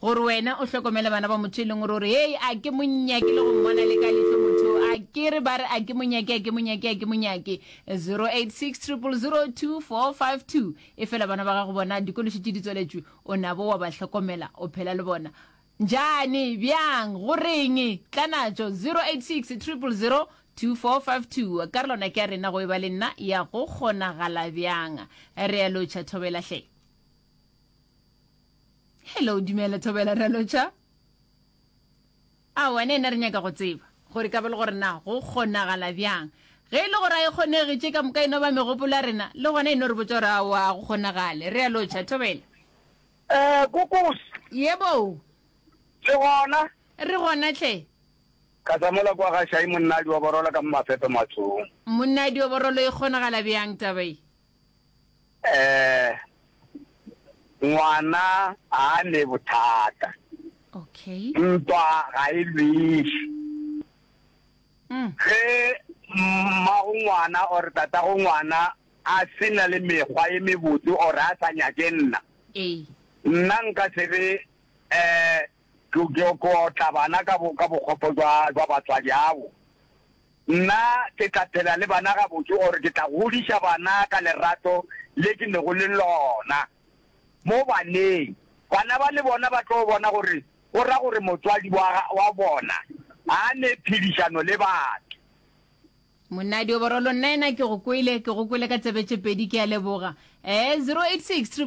Gore wena o hlokomele bana ba motho e leng gore o re, Hei, a ke mo nyake le go mmona le ka lehlo motho o, akere ba re a ke mo nyake, a ke mo nyake, a ke mo nyake. 0860002452 Efela bana ba gago bona dikološi tše di tswaletšwe, o nabo wa ba hlokomela, o phela le bona. Njani? Bjang? Go reng? Tlanatšo. 0860002452 Ka re lona ke ya rena go e ba le nna ya Go Kgonagala Bjang? Re a lotšha, Thobela hle. hello dumela thobela ralocha a wena ena re nyaka go tseba gore ka ba le gore na go kgonagala bjang ge e le gore a e kgonege tše ka moka eno ba megopolo ya rena le gona eno re botsa gore a wa go kgonagale re ya lotšha thobela um kokos yebo le gona re gona tlhe ka tsamola kwa ga šai monnadi wa borola ka mo mafepe matsong monnadi wa borolo e kgonagala bjang tabae um ngwana a ne bothata okay ntwa ga e lwešwe mm. ge mmago ngwana or tatago ngwana a se na le mekgwa e mebotse or a sa nyake nna nna nka sebe um ke kotla bana ka bokgopo jwa batswadi abo Nna ke tla phela le bana gabotse or ke tla godiša bana ka lerato le ke nego le lona mo baneng. Bana ba le bona ba tlo bona gore go ra gore motswadi wa wa bona ga a ne phedišano le batho. Monadi o borolo nnaena ke go kwele ke go kwele ka tsebe tše pedi ke a leboga ee 086 666